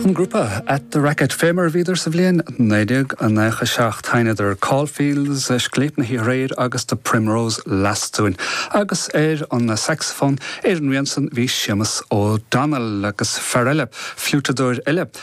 An grupa At The Racket, fé mar a bhíodar sa bhliain 1997, sheinneadar Caulfield's, Scléip na hOíche Aréir agus The Primrose Lass dúinn, agus ar an sacsafón, ar an rian san, bhí Seamus O'Donnell, agus fear eile, fliúiteadóir eile,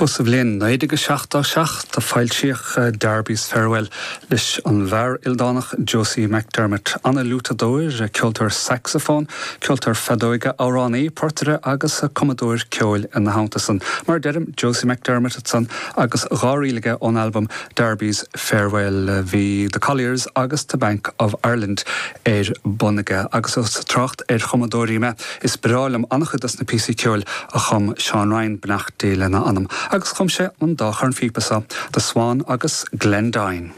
Ba sa bhliain 1977 a foilsíodh Darby's Farewell leis an bhfear ildánach Josie McDermott, an-fhliúiteadóir, ceoltóir sacsafón, ceoltóir feadóige, amhránaí, portaire agus cumadóir ceoil. Ina theannta san, mar a deirim, Josie McDermott ansan agus dhá ríl aige ón albam Darby's Farewell bhí The Colliers agus The Bank of Ireland ar bun aige. Agus trácht ar chumadóirí me. Is breá liom an-chuid dos na píosaí ceoil a chum Seán Ryan, Beannacht Dé lena anam, agus chum sé an dá chornphíopa so, The Swan agus Glendoyne.